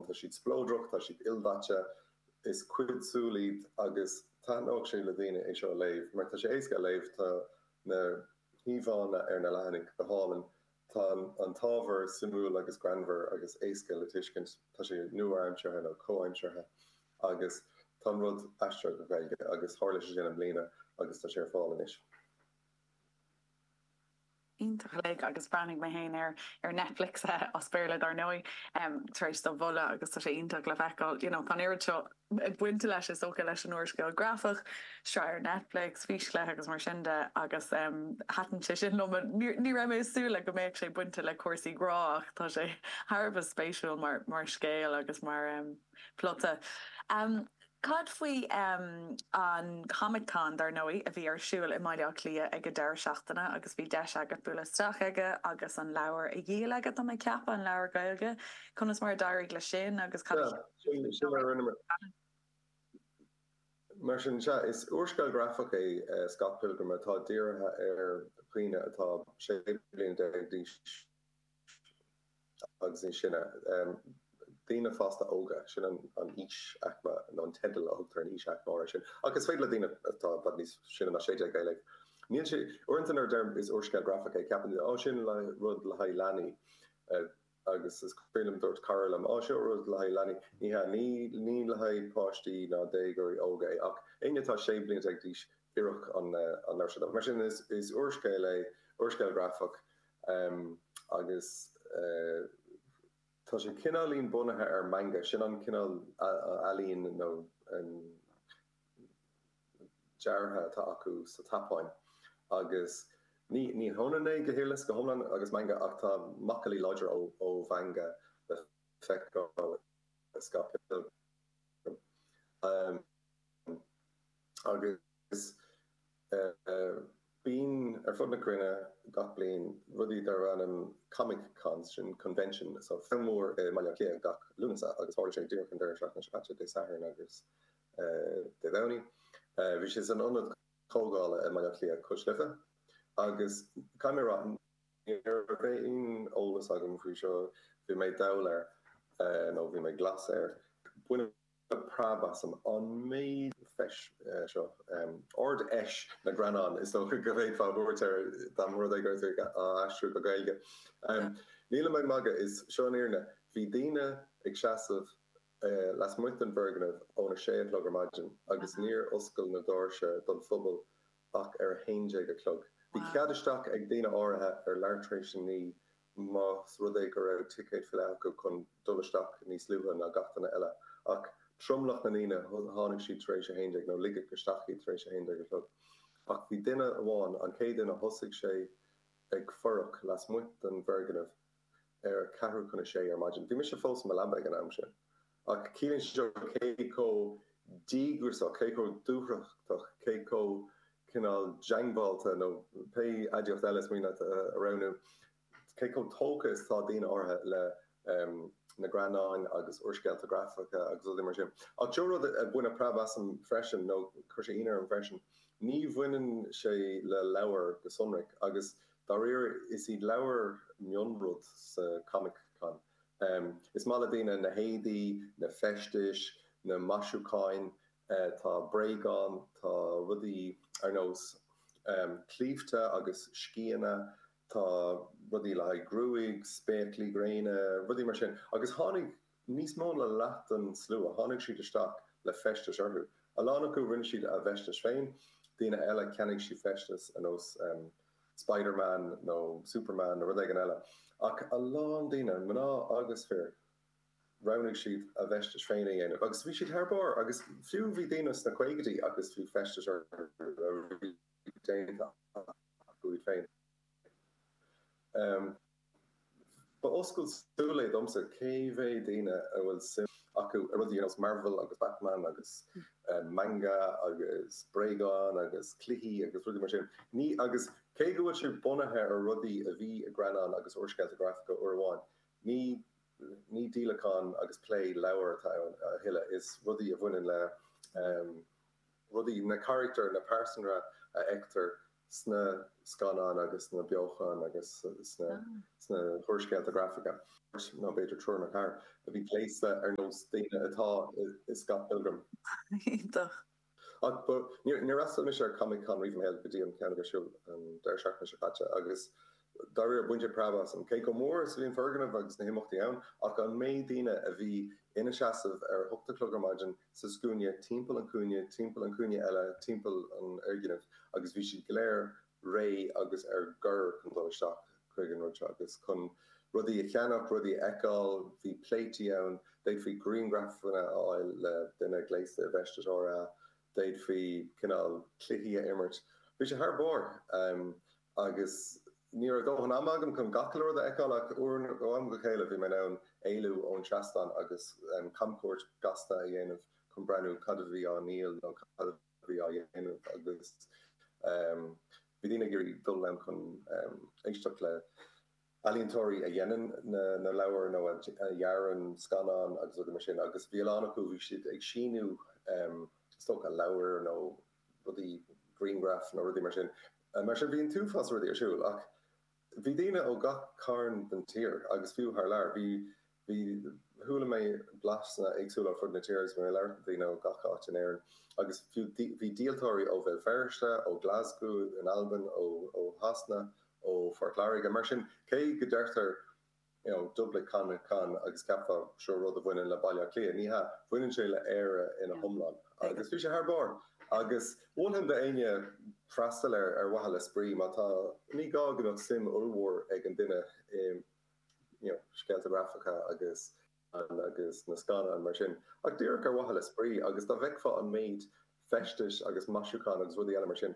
Tá siad spleodrach, tá siad ildaite, is cuid súl iad agus taithneodh sé le daoine é seo a léamh mar tá sé éasca a léamh, tá na híomhánna ar na leathanaigh go hálainn, tá an t-ábhar suimiúil agus greannmhar agus éasca le tuiscint, tá sé nua-aimseartha nó comhaimseartha agus tá an rud aistrithe go Gaeilge agus tharla sé sin i mbliana agus tá sé ar fáil anois. iontach uilig agus bhreathnaigh mé féin air ar Netflix, as Béarla dar ndóigh, tar éis do mholadh agus tá sé iontach le feiceáil you know tá an oiread seo bainte leis is dócha leis an úrscéal grafach, sraith ar Netflix, físchluiche agus mar sin de agus em thaitin sé sin liom but ní ní raibh mé ag súil le go mbeadh sé bainte le cúrsaí grá ach tá sé thar a bheith spéisiúil mar mar scéal agus mar em plota. Em. Cad faoi an Comic Con, dar ndóigh, a bhí ar siúl i mBaile Átha Cliath ag an deireadh seachtaine agus bhí deis agat bualadh isteach aige agus an leabhar a dhíol aige, tá mé ag ceapadh, an leabhar Gaeilge. Conas mar a d'éirigh leis sin agus cad a cheap tú faoin leabhar Sin mar a rinne mé. Scannán? Mar sin, sea, is úrscéal grafach é Scott Pilgrim atá dírithe ar dhaoine atá 16 bliana d'aois. agus níos sine. Daoine fásta óga, sin an aois aicme, nó an teideal a thugtar ar an aois aicme áirithe sin. Ach is féidir le daoine atá i bhfad níos sine ná sé déag é a léamh. Níl sé, uaireanta nuair a deirim is úrscéal grafach é ceapann daoine, Ó sin rud le haghaidh leanaí. Agus is cuimhin liom dúirt cara liom, Ó seo rud le haghaidh leanaí. Ní hea, ní le haghaidh páistí ná déagóirí óga é. Ach éinne atá sé bliana déag d'aois, oirfeadh an leabhar seo dóibh. Mar sin is úrscéal é, úrscéal grafach. Em, agus eh, tá sé cineáilín bunaithe ar manga, sin an cineál ealaín nó em, deartha atá acu sa tSeapáin agus ní, ní hionann é go huile is go hiomlán agus manga ach tá macallaí láidre ó, ó mhanga le feiceáil i Scott Pilgrim. Em, agus. Bíonn ar fud na cruinne gach bliain rudaí darb ainm Comic Cons, sin convention so feis mhór i mBaile Átha Cliath gach Lúnasa agus tharla sé díreach an deireadh seachtaine seo caite, Dé Sathairn agus Dé Domhnaigh. Bhí sé san ionad comhdhála i mBaile Átha Cliath, cois Life, agus caithfidh mé a rá ní raibh aon eolas agam faoi seo, bhí mé dall air nó bhí mé glas air. Baineadh. preab asam an méid feis seo. Ard-Fheis na nGreannán, is dócha go bhféadfá a thabhairt air dá mba rud é go raibh tú á aistriú go Gaeilge. Nílim ag magadh, is seo an fhírinne. Bhí daoine ag seasamh lasmuigh den bhfoirgneamh óna sé a chlog ar maidin agus níor oscail na doirse don phobal ach ar a haon déag a chlog. Bhí cead isteach ag daoine áirithe ar leathuair tar éis a naoi más rud é go raibh ticéad VIP acu chun dul isteach níos luaithe ná gach duine eile. Ach tromlach na ndaoine, tháinig siad tar éis a haon déag, nó ligeadh isteach iad tar éis a haon déag a chlog. Ach bhí duine amháin, an chéad duine, thosaigh sé ag fuireach lasmuigh den bhfoirgneamh ar a ceathrú chun a sé ar maidin. Bhí mise fós i mo leaba ag an am sin. Ach ciallaíonn seo cé chomh díograsach, cé chomh dúthrachtach, cé chomh cineál diongbháilte nó pé aidiacht eile is mian leat a roghnú, cé chomh tógtha is atá daoine áirithe le na greannáin agus úrscéalta grafacha agus rudaí mar sin. Ach seo rud a baineadh preab asam freisin, nó chuir sé ionadh orm freisin. Ní bhaineann sé le leabhair go sonrach, agus dáiríre is iad leabhair an mionrud sa Comic-Con. Is maith le daoine na héadaí, na feistis, na maisiúcháin. Tá bréagáin, tá rudaí ar nós claímhte agus sceana, tá rudaí le haghaidh gruaige, spéaclaí gréine, rudaí mar sin. Agus tháinig níos mó na leath den slua, tháinig siad isteach le feistis orthu. A lán acu, rinne siad a bhfeistis féin, daoine eile, cheannaigh siad feistis ar nós. Spiderman nó Superman nó rud éigin eile. Ach a lán daoine, mná agus fir, roghnaigh siad a bhfeistis féin a dhéanamh agus bhí siad thar barr agus fiú bhí daoine sna caogaidí agus bhí feistis orthu a bhí déanta acu iad féin. Ba oscailt súl é domsa cé mhéad daoine a bhfuil suim acu i rudaí ar nós Marvel agus Batman agus manga agus bréagáin agus cluichí agus rudaí mar sin. Ní agus cé go bhfuil sé bunaithe ar rudaí a bhí i greannáin agus úrscéalta grafacha uair amháin, ní ní díolachán agus plé leabhar atá ann a thuilleadh, is rudaí a bhaineann le rudaí, na caractair, na pearsanra a fheictear sna scannáin agus sna beochana agus sna húrscéalta grafacha, nó b'fhéidir triúr nó ceathrar, a bhí gléasta ar nós daoine atá i Scott Pilgrim. Iontach! Ach ba, níor fhreastail mise ar Comic Con riamh i mo shaol go dtí an ceann a bhí ar siúl an deireadh seachtaine seo caite agus Dáiríre, baineadh preab asam, cé chomh mór is a bhí an foirgneamh agus na himeachtaí ann, ach an méid daoine a bhí ina seasamh ar a hocht a chlog ar maidin sa scuaine timpeall an chúinne, timpeall an chúinne eile, timpeall an fhoirgnimh, agus bhí siad go léir réidh agus ar bior chun dul isteach chuig an rud seo agus chun rudaí a cheannach, rudaí a fheiceáil. Bhí pléití ann, d'fhéadfaí grianghrafanna a fháil le duine gléasta i bhfeisteas Thor, d'fhéadfaí cineál cluichí a imirt. Bhí sé thar barr! Agus ní raibh dóthain ama agam chun gach uile rud a fheiceáil ach ó am go chéile bhí mé in ann éalú ón seastán agus camchuairt ghasta a dhéanamh chun breathnú cad a bhí á ndíol nó cad a bhí á dhéanamh agus bhí daoine ag iarraidh dul ann chun éisteacht le healaíontóirí a dhéanann na leabhair nó a dhearann scannáin agus rudaí mar sin agus bhí a lán acu, bhí siad ag síniú is dócha leabhair nó. rudaí, griangraif nó rudaí mar sin. Mar sin bhí an t-uafás rudaí ar siúl ach bhí daoine ó gach carn den tír agus fiú thar lear. Bhí, bhí, chuala mé blaseanna éagsúla ar fud na tíre agus bhí mé ag labhairt le daoine ó gach áit in Éirinn agus fiú bhí díoltóirí ó Bhéal Feirste, ó Ghlaschú in Albain, ó Shasana, ó Phort Lairge. Mar sin cé go deirtear. you know, Dublin Comic Con agus ceapfá gurb eo rud a bhaineann le Baile Átha Cliath. Ní hea, bhaineann sé le Éire ina hiomlán. Agus bhí sé thar barr. Agus mholfainn d'éinne freastal air ar mhaithe le spraoi má tá, ní gá go mbeadh suim ollmhór ag an duine i, you know, scéalta grafacha agus. Ann agus na scannáin mar sin, ach díreach ar mhaithe le spraoi, agus dá bhfeicfeá an méid feistis agus maisiúcháin agus rudaí eile mar sin,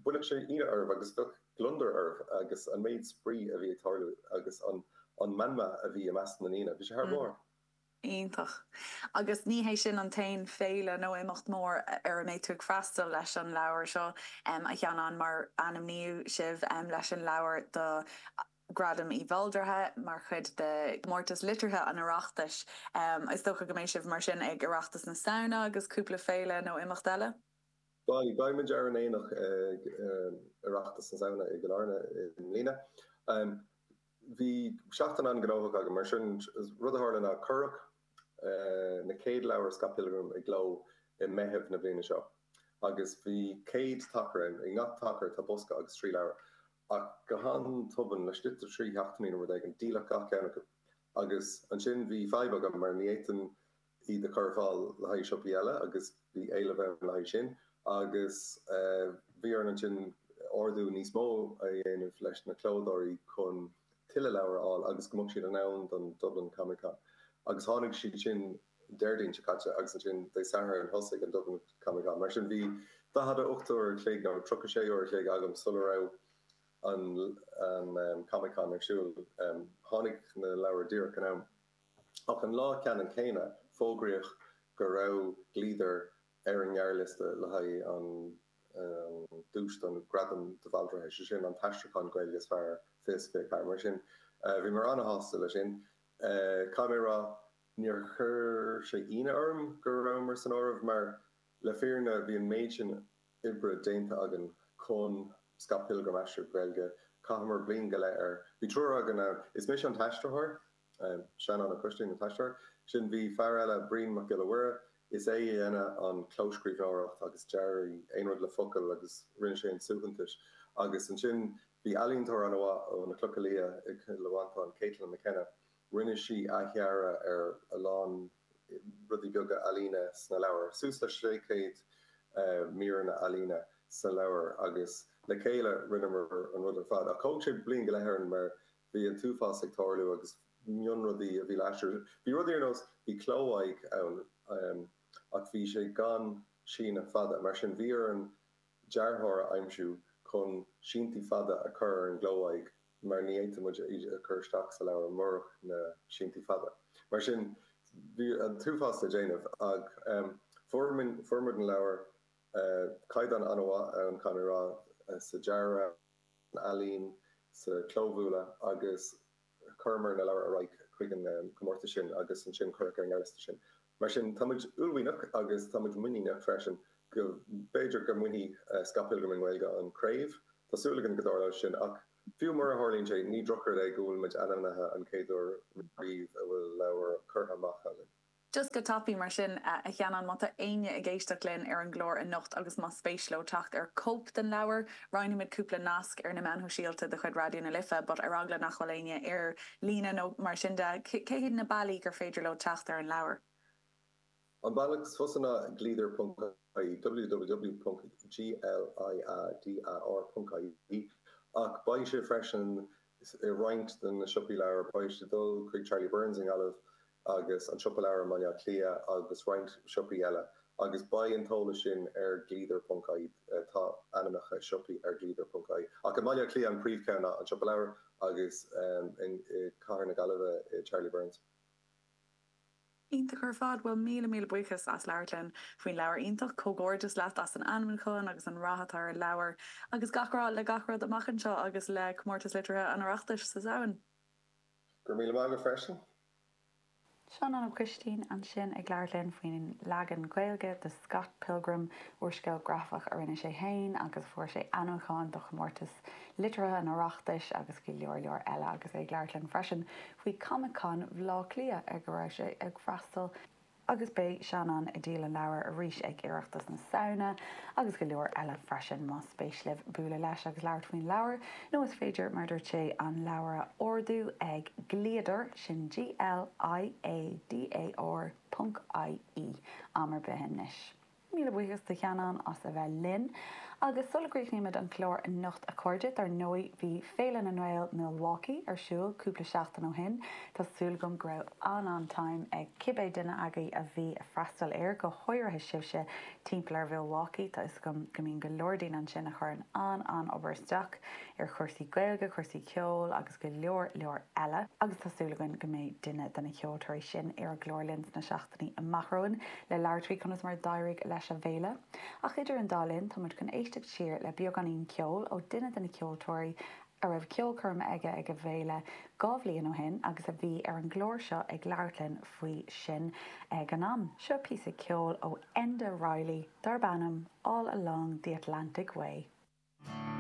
chuirfeadh sé ionadh oraibh agus bheadh gliondar oraibh agus an méid spraoi a bhí ag tarlú agus an an meanma a bhí i measc na ndaoine, bhí sé thar barr. Iontach. Agus ní hé sin an t-aon féile nó imeacht mór ar a mbeidh tú ag freastal leis an leabhar seo, a Sheanáin, mar ainmníodh sibh leis an leabhar do. Gradam de Bhaldraithe mar chuid de Chomórtas Liteartha an Oireachtais. Is dócha go mbeidh sibh mar sin ag Oireachtas na Samhna agus cúpla féile nó imeacht eile? Beidh. Beidh muid ar an aonach ag Oireachtas na Samhna i gCill Airne i mbliana. Bhí seachtain an-ghnóthach againn mar sin. Rud a tharla ná cuireadh na chéad leabhair Scott Pilgrim i gcló i Meitheamh na bliana seo agus bhí 100 tacar ann. I ngach tacar tá bosca agus trí leabhar. Ach go han-tobann, laistigh de trí seachtainí nó rud éigin, díoladh gach ceann acu. Agus ansin bhí fadhb agam mar ní fhéadfainn iad a chur ar fáil le haghaidh siopaí eile agus bhí éileamh ann le haghaidh sin. Agus bhí orainn ansin ordú níos mó a dhéanamh leis na clódóirí chun tuilleadh leabhar a fháil agus go mbeadh siad in am don Dublin Comic Con. Agus tháinig siad sin Déardaoin seo caite agus ansin Dé Sathairn thosaigh an Dublin Comic Con. Mar sin bhí daichead a hocht uair an chloig nó tríocha sé uair an chloig agam sula raibh an Comic Con ar siúl. Tháinig na leabhair díreach in am. Ach an lá ceannann céanna fógraíodh go raibh Gliadar ar an ngearrliosta le haghaidh an duais don Ghradam de Bhaldraithe, sé sin an t-aistriúchán Gaeilge is fearr, fiche fiche ceathair. Mar sin bhí mé an-sásta leis sin. Caithfidh mé a rá. Níor chuir sé ionadh orm go rabhamar san áireamh mar, le fírinne, bhí an méid sin oibre déanta againn chun Scott Pilgrim, a aistriú go Gaeilge, chaitheamar bliain go leith air. Bhí triúr againn ann, is mise an t-aistritheoir, Seanán Ó Coistín an t-aistritheoir, ansin bhí fear eile, Brian Mac Giolla Mhuire, is é a dhéanadh an clóscríbhneoireacht agus dearadh, aon rud le focail agus rinne sé an suaitheantais agus ansin bhí ealaíontóir an-mhaith ó na Clocha Liath i gCill Mhantáin, Caitlin McKenna. Rinne sí athdhearadh ar a lán rudaí beaga ealaíne sna leabhair, suas le 600 míreanna ealaíne sna leabhair agus le chéile rinneamar an rud ar fad. Ach thóg sé bliain go leith orainn mar bhí an t-uafás ag tarlú agus mionrudaí a bhí le haistriú. Bhí rudaí ar nós, bhí cló-aghaidh ann ach bhí sé gan síneadh fada, mar sin bhí orainn dearthóir a aimsiú chun síntí fada a chur ar an gcló-aghaidh mar ní fhéadfadh muid iad a chur isteach sa leabhar murach na síntí fada. Mar sin bhí an t-uafás le déanamh ach fuair fuair muid an leabhar. Caighdeán an-mhaith ann caithfidh mé a rá sa dearadh, san ealaín, sa chlóbhualadh agus Chuireamar na leabhair ar aghaidh chuig an comórtas sin agus ansin cuireadh ar an ngearrliosta sinn. Mar sin, tá muid uaillmhianach agus tá muid muiníneach freisin go b'fhéidir go mbainfidh Scott Pilgrim i nGaeilge an craobh. Tá súil againn go dtarlóidh sin ach fiú mura tharlaíonn sé, ní drochrud é go bhfuil muid ainmnithe an chéad uair riamh a bhfuil leabhar curtha amach againn. Just go tapa mar sin, a Sheanáin, má tá éinne ag éisteacht linn ar an gclár anocht agus más spéis leo teacht ar chóip den leabhar, roinnfimid cúpla nasc ar na meáin shóisialta de chuid Raidió na Life, but ar eagla nach bhfuil éinne ar líne nó mar sin de, cé hiad na bealaí gur féidir leo teacht ar an leabhar? An bealach is fusa ná gliadar ponc ie www.gliadar.ie ach beidh sé freisin i roinnt de na siopaí leabhar, beidh sé ag dul chuig Charlie Byrne's i nGaillimh, agus an Siopa Leabhar i mBaile Átha Cliath agus roinnt siopaí eile agus beidh an t-eolas sin ar Gliadar ponc ie Tá ainmneacha siopaí ar Gliadar ponc ie ach i mBaile Átha Cliath an príomhcheann ná An Siopa Leabhar agus i gCathair na Gaillimhe, Charlie Byrne's. Iontach ar fad! Bhuel míle míle buíochas as labhairt linn faoin leabhar iontach. Comhghairdeas leat as an ainmniúchán agus an rath atá ar an leabhar. Agus gach rath le gach rud amach anseo agus le Comórtas Liteartha an Oireachtais sa Samhain. Go raibh míle maith agat freisin. Seanán Ó Coistín ansin ag labhairt linn faoin leagan Gaeilge de Scott Pilgrim, úrscéal grafach a rinne sé féin agus fuair sé ainmniúchán do chomórtas liteartha an Oireachtais agus go leor leor eile agus é ag labhairt linn freisin faoi Comic Con Bhaile Átha Cliath ar go raibh sé ag freastal agus beidh Seanán ag díol an leabhair arís ag Oireachtas na Samhna agus go leor eile freisin. Más spéis libh bualadh leis agus labhairt faoin leabhar, nó is féidir, mar a dúirt sé, an leabhar a ordú ag Gliadar, sin G-L-I-A-D-A-R ponc I-E, am ar bith anois. Míle buíochas do Sheanán as a bheith linn. Agus sula gcríochnaímid an clár anocht a chairde, dár ndóigh bhí Féile na nGael Milwaukee ar siúl cúpla seachtain ó shin. Tá súil agam go raibh an-an-time ag cibé duine agaibh a bhí ag freastal air, go háirithe sibhse timpeall ar Mhilwaukee, tá 'fhios agam go mbíonn go leor daoine ansin a chuireann an-an-obair isteach ar chúrsaí Gaeilge, cúrsaí ceoil agus go leor leor eile. Agus tá súil againn go mbeidh duine de na ceoltóirí sin ar an gclár linn sna. amach romhainn le labhairt faoi conas mar a d'éirigh leis a bhféile, ach idir an dá linn, táimid chun éisteacht siar le beagáinín ceoil ó duine de na ceoltóirí a raibh ceolchoirm aige ag a bhféile dhá bhliain ó shin agus a bhí ar an gclár seo ag labhairt linn faoi sin ag an am. Seo píosa ceoil ó Enda Reilly darb ainm 'All Along the Atlantic Way'.